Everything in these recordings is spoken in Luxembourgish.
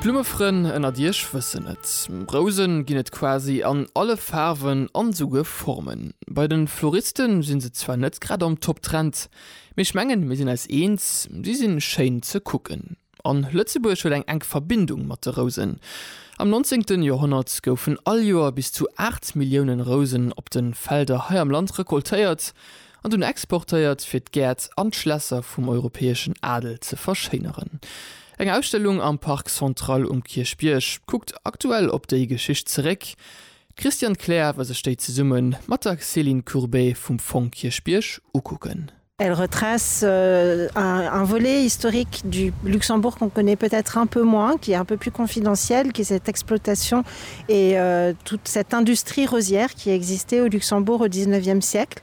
D'Blummefrënn ënnert iech wëssen et, Rousen ginn et quasi an alle Faarwen an esouguer Formen. Bei den Floristen sinn se zwar net grad am Top Trend, mee ech mengen mir sinn eis eens, si sinn schéin ze kucken. An Lëtzebuerg huet eng enk Verbindung mat de Rousen. Am 19. Joerhonnert goufen all Joer bis zu 8 Milliounen Rousen op den Felder hei am Land recoltéiert, An dunn exportéiert, fir d'Gäert an d'Schlässer vum europäeschen Adel ze verschéineren. Eng Ausstellung am Parc Central um Kierchbierg kuckt aktuell op déi Geschicht zeréck. D'Christiane Kleer war sech déi zesumme mat der Céline Courbé vum Fong Kierchbierg ukucken. Elle retrace un volet historique du Luxembourg qu'on connaît peut-être un peu moins, qui est un peu plus confidentiel, qui est cette exploitation et toute cette industrie rosière qui existait au Luxembourg au dix-neuvième siècle.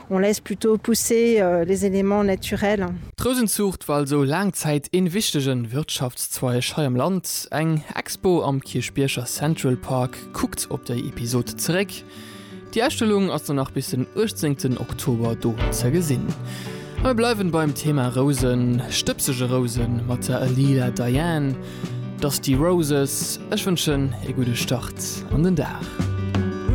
On laisse plutôt pousser les éléments naturels. D'Rousenzuucht war also laang Zäit ee wichtege Wirtschaftszweig hei am Land. Eng Expo am Kierchbierger Central Park kuckt op déi Episod zeréck. Déi Ausstellung ass dann nach bis den 18 Oktober do ze gesinn. A mir bleiwen beim Thema Rousen, stëbsege Rousen, mat der Lila Diane, Dusty Roses. Ech wënschen ee gudde Start an den Dag.